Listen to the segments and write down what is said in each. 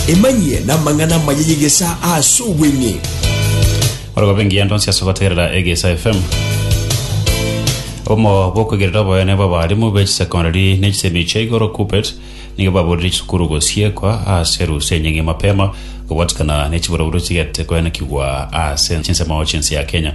Emanyie n'amang'ana amaya y'egesaa ase obweng'e. Ore gobe engiya ndonsi ase gotegerera Egesa FM. Obomo bw'okoigerera oboyene bw'abarimu be chisecondary ne chisemi chia igoro KUPPET nigo baburire chisukuru gosiekwa ase erusa enying'ie mapema kobwatikana ne chiboroboro chigetete koenekigwa ase chinsemo chinse ya Kenya.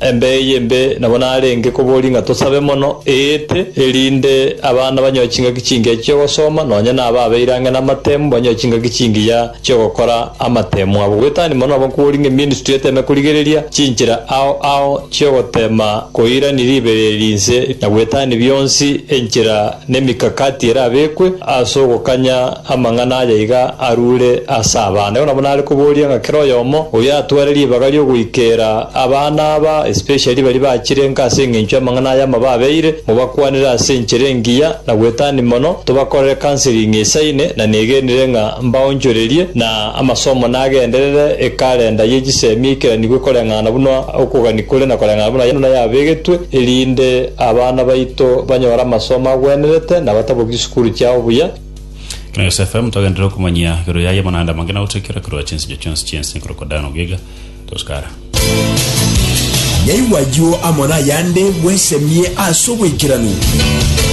Embe eye embe nabo narenge koboria ng'a tosabe mono eete, erinde abana banyore chingaki chingiya chi'ogosoma, nonya na aba abeire ang'e namatemu banyore chingaki chingiya chi'ogokora amatemu abo. Goetania mono nabo nkoboria ng'a eministry eteme korigereria chinchera ao ao chi'ogotema koirania ribereri inse na goetania bionsi enchera Nemikakati erabekwe as'ogokanya amang'ana aya iga arure as'abana. Igo nabo nare koboria ng'a kera oyomo oyio atware ribaga riogoikera abana aba, especially baria bachire enka as'engencho y'amang'ana aya amababeire, mobakwanere as'enchera engiya na gwetania mono, tobakorere counseling esaine, na negenire ng'a mbaonchorerie na amasomo nagenderere ekalenda ye chisemi eikeraniwe koreng'ana buna okogania kore na koreng'ana buna yano nayabegetwe, erinde. Abana baito banyore amasomo agwenerete na batabokie chisukuru chiao buya. Kina Gose FM togenderera okomanyia igoro yaye amang'anda amange na gotoikera korwa chinsinyo chionsi chi'ense nkorokwa Dan Ogiga, Toscara. Nyaigwa ayio amo nayande bwesemie ase oboikeranu.